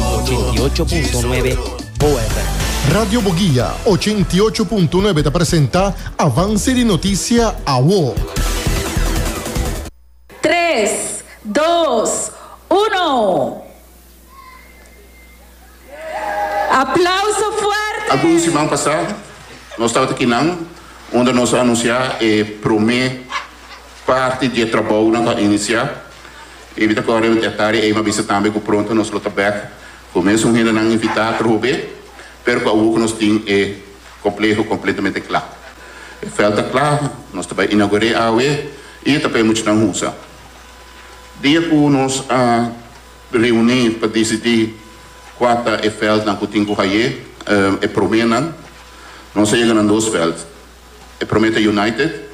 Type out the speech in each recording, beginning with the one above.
ochenta i ocho punto nuebe Boa FM. Radio Boguia ochenta i ocho punto nuebe ta presenta Avance di Noticia Awo. Tres, dos, uno! Aplauso fuerte! Algun siman pasá nos tabata kinan unda nos a anunsiá e promé parti di e trabounan ku a inisiá. E mi ta kòrda di e tarea ei, mi a bisa tambe ku pronto nos lo ta bèk ku mesun hendenan invitá tur hopi, pero ku awor ku nos tin e kompleho kompletamente kla. E vèlt ta kla, nos ta bai inaugur'é awe i e ta pa e muchanan hunsa. Dia ku nos a reuní pa disidí kua ta e vèltnan ku tin ku haye e proménan, nos a yega na dos vèlt. E Promete United,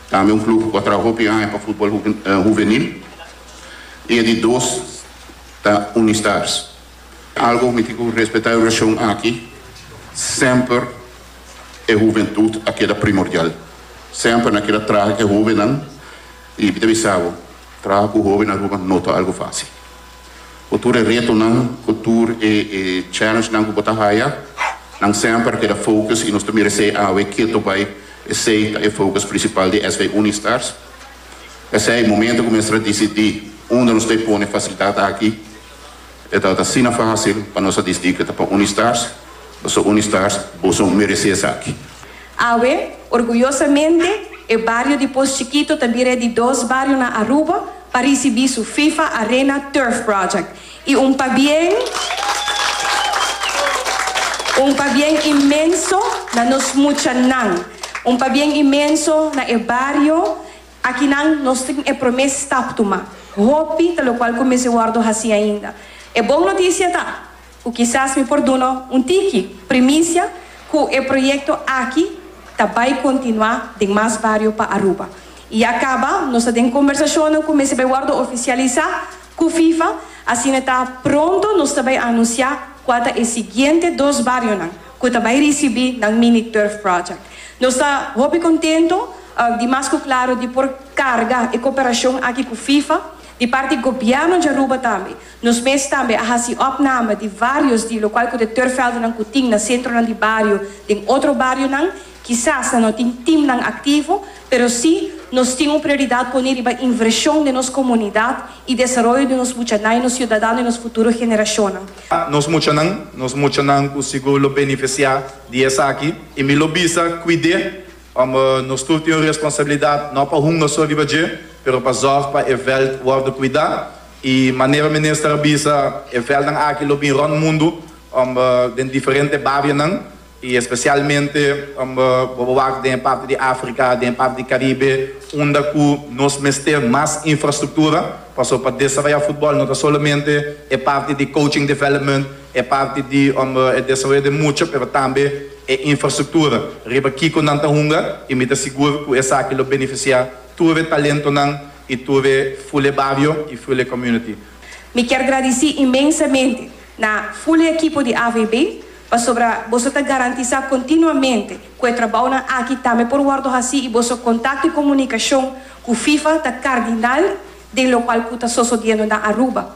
tambe un club cu a traha hopi aña pa futbol huvenil, y e di dos ta Unistars. Algo cu miti cu respeta e oracion aki, semper e huventud a keda primordial. Semper nan a keda traha cu e hobennan y mi ta bisa bo, traha cu hoben Aruba no ta algo facil. Ku tur e retonan, ku tur e challenge-nan ku bo ta haya, nan semper a keda focus i nos ta meresé awe ketu bai. Esei ta e focus prinsipal di SV Unistars. P'esei, momento ku mester a disidí unda nos ta pone fasilidat aki, e ta ta asina fásil pa nos a disidí ku ta pa Unistars, pasobra Unistars, boso meresé esaki. Awe, orguyosamente, e bario di Pos Chikito ta bira e di dos bario na Aruba pa risibí su FIFA Arena Turf Project. I un pabien, un pabien inmenso na nos muchanan, un pabien inmenso na e bario. Akinan nos tin e promé stap tumá. Hopi ta lokual ku mester wòrdu hasí ainda. E bon notisia ta. Cu kisas mi por duna un tiki primicia cu e proyecto aki ta bay continua den mas bario pa Aruba. Y ya caba nos ta den conversacionnan cu mester bay wordo oficialisa cu FIFA, asina ta pronto nos ta bay anuncia cua ta e siguiente dos barionan cu ta bay ricibi nan mini turf project. Nos ta hopi contento di mas cu claro di por carga e cooperacion aki cu FIFA di parti gobierno di Aruba tambe. Nos mes tambe a haci opname di varios di locual cu de turfveldennan cu tin na centronan di bario den otro barionan. Kisas nan no tin teamnan activo, pero si nos tin un prioridad poni riba inversion den nos comunidad y desaroyo di nos muchanan y nos ciudadano y nos futuro generacionnan. Nos muchanan, nos muchanan cu sigur lo beneficia di esaki. Y mi lo bisa cuide, ome nos tur tin un responsabilidad no pa hunga so riba dje, pero pa zorg pa e veld wordo cuida. I manera minister a bisa, e vèlnan aki lo bin rònt mundu den diferente barionan, i espesialmente bo a wak den e parti di Afrika, den e parti di Karibe, unda ku nos mester mas infrastruktura. Paso pa desarroya futbòl no ta solamente e parti di coaching development, e parti di e desaroyo den mucha, pero tambe e infrastruktura riba kiko nan ta hunga, i mi ta sigur ku esaki lo benefisiá tur e talentonan I tuve Fule Bario i Fule Community. Mi kier gradici inmensamente na Fule ekipo di AVB pasobra boso ta garantisa continuamente cu e trabounan aki tambe por wordo haci i boso contacto i comunicacion cu FIFA ta cardinal den locual cu ta sosodiendo na Aruba.